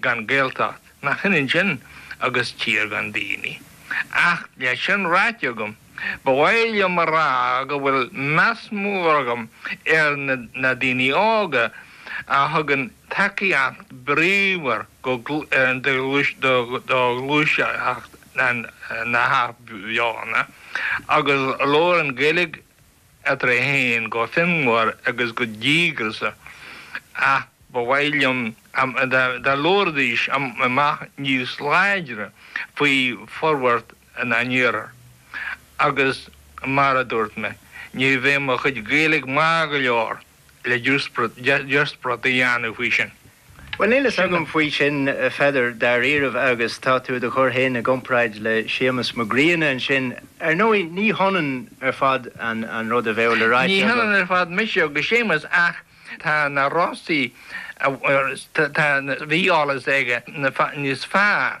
gan Gaeltacht, nach ionann sin agus tír gan daoine. Ach le sin ráite agam, ba mhaith liom a rá go bhfuil meas mór agam ar na daoine óga a thugann tacaíocht bríomhar do ghluaiseacht na hathbheochana agus a labhrann Gaeilge, eadar iad féin go fonnmhar agus go díograiseach, ach ba mhaith liom dá labhraídís amach níos láidre faoi forbhairt na n-iarthar, agus mar a dúirt mé, ní bheidh mo chuid Gaeilge maith go leor le díospóireacht a dhéanamh faoi sin. Bhuel, níl fhios agam faoi sin, a Pheadair, dáiríribh, agus tá tú do do chur féin i gcomparáid le Séamus Mac Grianna ansin. Ar ndóigh, ní hionann ar fad an rud a bheadh le rá aige Ní hionann ar fad mise agus Séamus ach tá na Rosa, tá, bhí eolas aige níos fearr.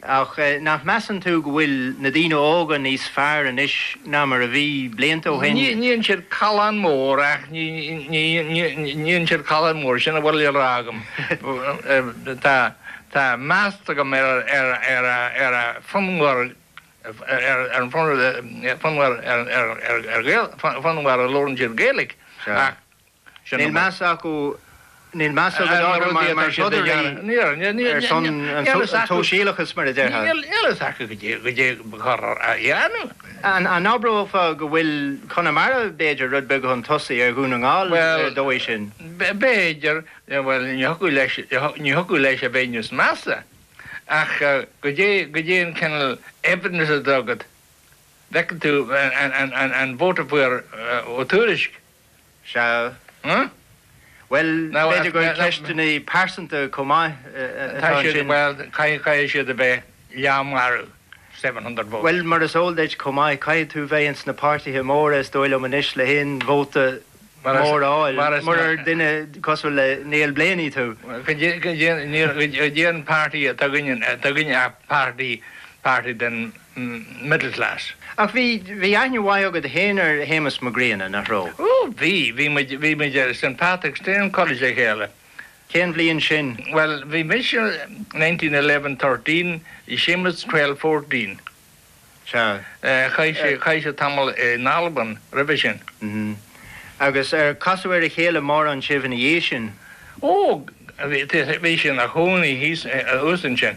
Ach nach measann tú go bhfuil na daoine óga níos fearr anois ná mar a bhí blianta ó shin? Níonn siad callán mór ach níonn siad callán mór, sin a bhfuil le rá agam. Tá meas agam ar a fonnmhar a labhrann siad Gaeilge ach Níl meas acu orm mar throdairí ar son an tsóisialachais, mar a déarfá. Níl eolas acu go dté go gcuirthear a dhéanamh. An n-abrófá go bhfuil Conamara, b'fhéidir, rud beag chun tosaigh ar Dhún na nGall ar an dóigh sin? B'fhéidir, bhuel, ní thiocfadh leis a bheith níos measa, ach go dté an cineál evidence atá agat, an bhfaca tú an vóta a fuair Ó Tuairisg. Sea. Bhuel, b'fhéidir gur ceisteanna pearsanta chomh maith atá ansin. Bhuel, caithfidh siad a bheith leath marbh, seven hundred votes. Bhuel, mar is eol duit chomh maith, caithfidh tú bheith ins na páirtithe móra, is dóigh liom anois, le haon vóta mór a fháil, murar duine cosúil le Neil Blaney tú. Go dté an party atá againne ach party. party den middle class. Ach bhí, bhí aithne mhaith agat féin ar Shéamus Mac Grianna, nach raibh? Ó, bhí, bhí muid, bhí muid ar St. Patrick's Training College le chéile. Cén bhliain sin? Bhuel, bhí mise nineteen eleven thirteen, bhí Séamus twelve fourteen. Sea. Chaith sé, chaith sé tamall in Albain roimhe sin. Mhm. Agus ar casadh ar a chéile mórán sibh ina dhiaidh sin? Ó, bhí, bhí sé ina chónaí thíos, thuas ansin.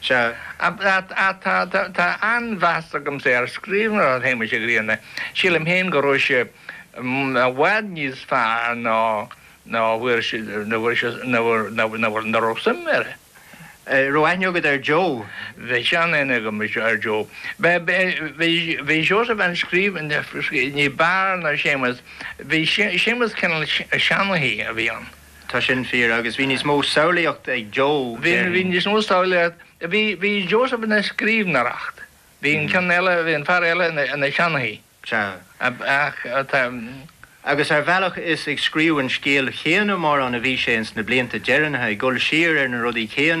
Sea, tá an-mheas agamsa ar scríbhneoireacht Shéamais Uí Ghrianna. Sílim féin go raibh sé i bhfad níos fearr ná ná raibh suim air. An raibh aithne agat ar Joe? Bhí seanaithne agam ar Joe. Bhí Seosamh ina scríbhneoir ní b'fhearr ná Séamus. Bhí Séamus cineál seanchaí a bhí ann. Tá sin fíor, agus bhí níos mó samhlaíocht ag Joe, déarfainn. Bhí níos mó samhlaíocht. Bhí Seosamh ina scríbhneoir. Bhí an ceann eile, bhí an fear eile ina sheanchaí. Sea. Ach tá. Agus ar bhealach is ag scríobh an scéil chéanna mórán a bhí sé ins na blianta deireanacha, ag dul siar ar na rudaí céanna,